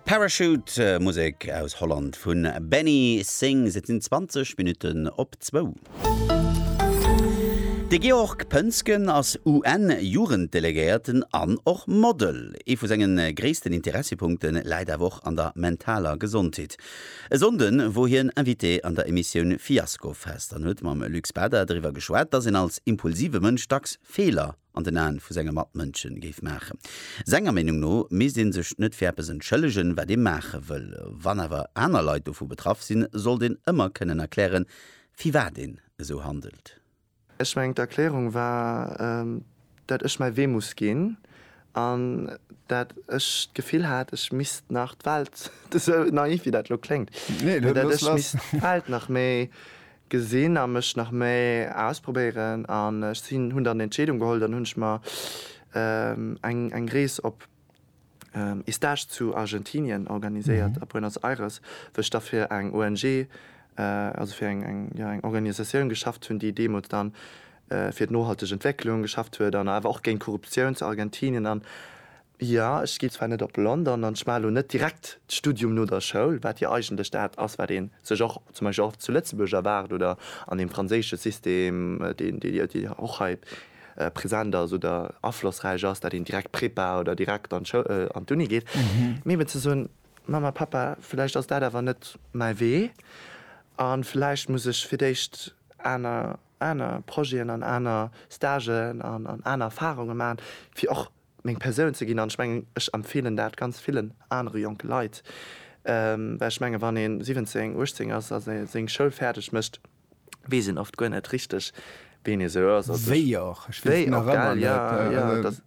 Parachute, Musek aus Holland vu Benny Sings. Et sinn 20 Minutten op zwou. De Georg Pönsgen ass UN-Jugenddelegéierten an och Model. Ee vu senge gréissten Interessepunkte läit awer och an der mentaler Gesondheet. E Sonnde wor hien Invité an der Emissioun Fiasko Fest an huet mam Luc Spada driwwer geschwat, dass een als impulsive Mënsch dacks Feeler an den Aen vu senge Matmënschen géif maachen. Senger Meenung no misst een sech net fir eppes entschëllegen, wat ee maache wëll. Wann awer aner Leit dovu betraff sinn, sollt een ëmmer kënnen erklären, firwat een esou handelt. Ech mengen, d'Erklärung war, dat ech mäi Wee muss ginn an dat ech d'Gefill hat, ech misst nach d'Welt, esou naiv wéi dat elo kléngt, mee dat ech misst d'Welt nach méi gesinn a mech nach méi ausprobéieren an ech sinn hunn dann Entscheedung geholl, dann hunn ech mer eng eng Rees op ee Stage zu Argentinien organiséiert a Buenos Aires, wou ech da fir eng ONG, also fir eng eng jo eng Organisatioun geschafft hunn, déi deemools dann fir d'nohalteg Entwécklung geschafft huet an awer och géint Korruptioun zu Argentinien an Jo, ech ginn zwar net op London an ech maachen elo net direkt d'Studium no der Schoul, wat jo eigentlech dat ass, wat ee sech och zum Beispill och zu Lëtzebuerg erwaart oder an deem franséische System, deen jo och hei present ass oder aflossräich ass, dat een direkt Prepa oder direkt an d'Uni geet. Mee eben ze soen, Mamma, Pappa, vläicht ass dat awer net mäi Wee a vläicht muss ech fir d'éischt aner Projeten an aner Stagen an aner Erfarunge maachen, fir och meng Persoun ze ginn an ech mengen, ech empfeelen dat ganz villen anere jonke Leit, well ech menge wann ee 17, 18 ass a seng Schoul fäerdeg mécht, weess een oft guer net richteg, wien ee sou ass. Wéi och, ech weess nach ëmmer net.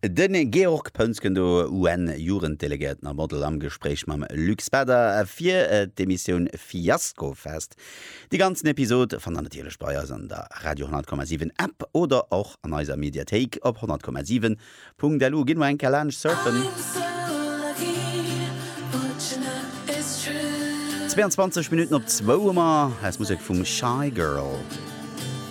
De Georg Pounz gëtt do UN-Jugenddelegéierten a Model am Gespréich mam Luc Spader fir d'Emissioun Fiasko Fest. Déi ganzen Episode fannt der natierlech bei eis an der Radio 10,7 App oder och an eiser Mediathéik op 10,7.lu. Gitt mol eng Kéier laanscht surfen. 22 Minutten op zwou hu mer. Hei ass Musek vum Shygirl.